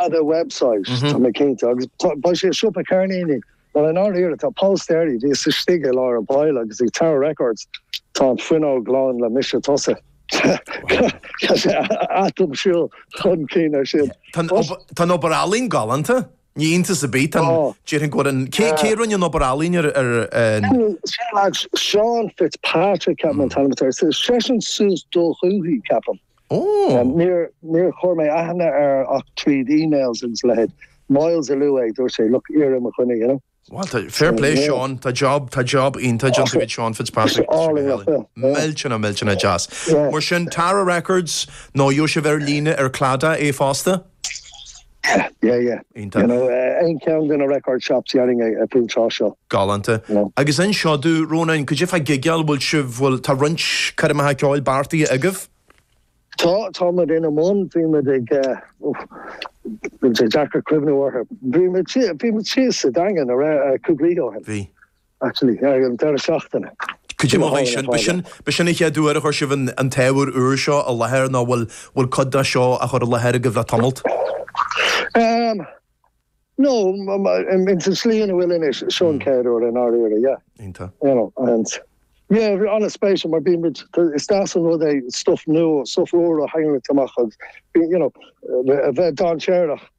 Add a website, tá mé cinnte, agus beidh sé i siopa ceirníní, mar i ndáiríre, tá póstaerí, bhíos istigh i lár an bhaile agus ag Tower Records, tá an fuinneog lán le mise tusa, tá sé atomshiúil chun cinn air sin. Tá an obair ealaín galánta, ní iontas ar bith, déarfainn go bhfuil an, cé a rinne an obair ealaín ar an. Seán Fitzpatrick, ceapaim an t-ainm atá air, seisean suas do dhúthaigh, ceapaim. Óóó! Níor chuir mé aithne air ach tríd emails agus a leithéid. Myles a luaigh é, dúirt sé, look, iarr ar mo dhuine, you know. Bhuel, tá, fair play Seán, tá job, tá job iontach déanta agat Seán Fitzpatrick agus Álainn, Micheál. yeah. Millteanach, millteanach deas. Yeah. Mar sin, Tower Records, nó gheobhaidh sibh ar líne ar Claddagh é fosta. Yeah, yeah. You know, aon cheann de na record shops déarfainn faoin tráth seo. Galánta. Agus inis domh, Rónán, cad é fá gigeáil, bhfuil sibh, bhfuil, tá roinnt coirmeacha ceoil beartaithe agaibh? Tá, tá muid ina mbun, bhí muid ag, bhfuil sé deacair cuimhniú orthu, bhí muid thíos sa Daingean ara cúpla oíche ó shin. Bhí. Actually, ar an deireadh seachtaine. Cad é mar a chuaigh sin? B'shin an chéad uair a chuir sibh an t-ábhar úr seo i láthair nó bhfuil cuid de seo á chur i láthair agaibh le tamalt? No, ins an slí ina bhfuil anois, seo an chéad uair i ndáiríre, yeah. Iontach. You know, and yeah, an-spéisiúil mar bíonn muid, is deas an rud é stuff nua, stuff úr a tharraingt amach agus, you know, a bheith dainséarach.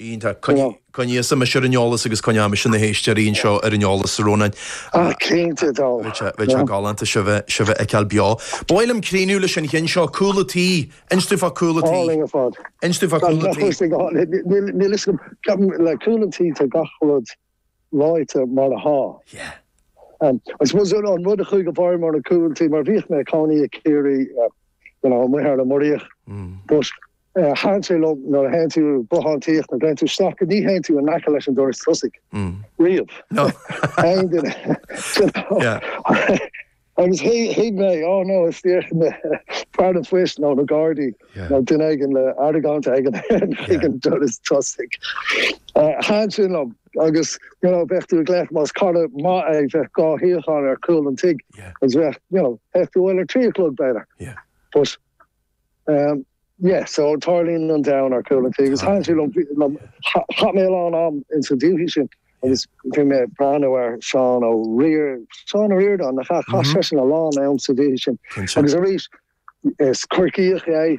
Iontach. Coinnigh thusa mise ar an eolas agus coinneoidh mise na héisteoirí anseo ar an eolas, a Rónáin. Ah, cinnte dó. Bheadh sé galánta sibh a fheiceáil beo. Ba mhaith liom críochnú leis an cheann seo, cúl a' tí. Inis domh fá cúl a' tí. Álainn ar fad. Inis domh fá cúl a' tí. Níl fhios agam, ceapaim le cúl an tí tá gach rud. ráite mar atá. Yeah. I suppose an rud a chuaigh i bhfeidhm orm ar an cúl tí, mar bhíodh mé ag cónaí i gCiarraí, you know, amuigh thar an Muiríoch, but thaitin sé liom nuair a théann tú bothántaíocht nó dtéann tú isteach go ní théann tú in aice leis an doras tosaigh riamh. No. Aon duine, you know. Yeah. Agus thuig mé, ó no, is dócha fear an phoist nó na Gardaí nó duine éigin le argóint éigin ag an doras tosaigh. Thaitin sin liom agus you know bheadh tú ag glaoch más cara maith é bheadh dhá shuíochán ar chúl an tigh agus bheadh you know bheadh tú abhaile ar trí a chlog b'fhéidir but Ehm yeah so tarlaíonn an domhan ar chúl an tí agus thaitin sin liom chaith mé a lán am ins an dúthaigh sin agus bhí mé ag breathnú ar Seán Ó Riar- Seán Ó Ríordáin nach ea? Chaith seisean a lán am sa dúthaigh sin agus arís is Corcaíoch é